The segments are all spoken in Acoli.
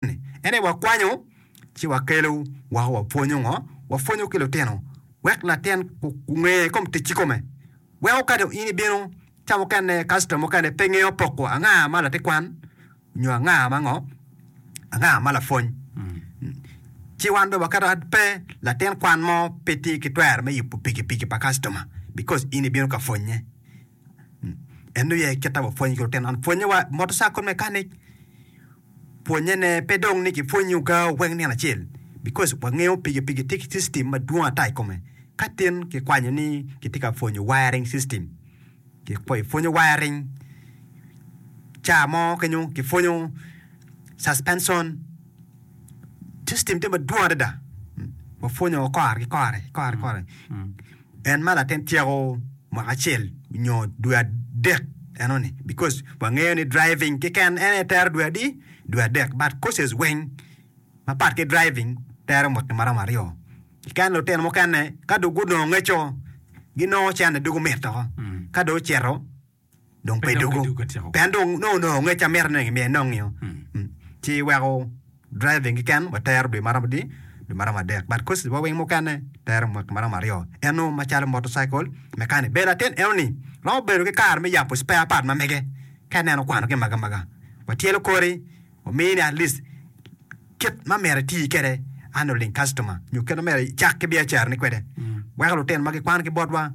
en aye wakwanyo ci wakelo woko wapwonyo ngo, wapwonyo ki lutino wek latin onge kom tic ki kome. Weko ka dong in ibino ca mukene kastam mukene pe ngeyo poko anga ma latikwan nyo anga ma ngo anga ma lapwony. Ci wan dong waketo ad pe latin kwan mo pe tye ki twero me yubo pikipiki pa kastoma because in ibino ka pwonye. En dong yey kita wapwony ki lutino man pwonye wa motorcycle mechanic pwonye ne pe dong ni kipwonyi oga oweng nino acel because wangeyo pigi pigi tye ki system madwong ata i kome ka tin kikwanyo ni kitye ka pwonyo wiring system kipwonyo wiring ca mo kenyo kipwonyo suspension system tye madwong adada wapwonyo kore ki kore kore kore En ma latin tyeko mwaka acel nyo dwe adek enoni because wangeyo ni driving kiken en aye tero dwe adi? dwe adek but courses weng mapat ki driving tero mwaki maromo aryo kiken lutino mukene ka dong gunongo ngeco ginongo cene dong gumito ka dong ocito dong pe dwogo pien dong nongo onongo ngec ma mito ni gimiye enongi-o. Ci iweko driving keken watero dwe ma romo adi, dwe ma romo adek but courses wa weng mukene tero mwaki ma romo aryo. En nongo macalo motorcycle mechanic. Bene latin enoni romo bedo ki kare me yabo spare part ma mege ka ineno okwano gin magamaga. Watyelo kori wamiyi ni at least kit ma myero iti kwede handling customer nyo kit ma myero icak ki biacarani kwede weko lutino ma gikwan ki botwa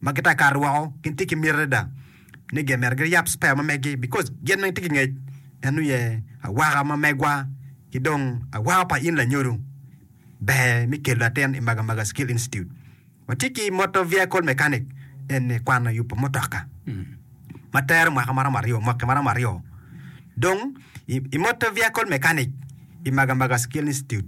ma gitye ka kato woko gin tye ki miti adada ni gen myero giryab spare ma megi because gen weng tye ki ngec en nongo ye awaka ma megwa ki dong awaka pa in lanyodo ber mi kelo latin i maga maga skill institute watye ki motor vehicle mechanic eni kwano yubo mutoka ma tero mwaka maromo aryo mwaki maromo aryo dong i motor vehicle mechanic i maga maga skill institute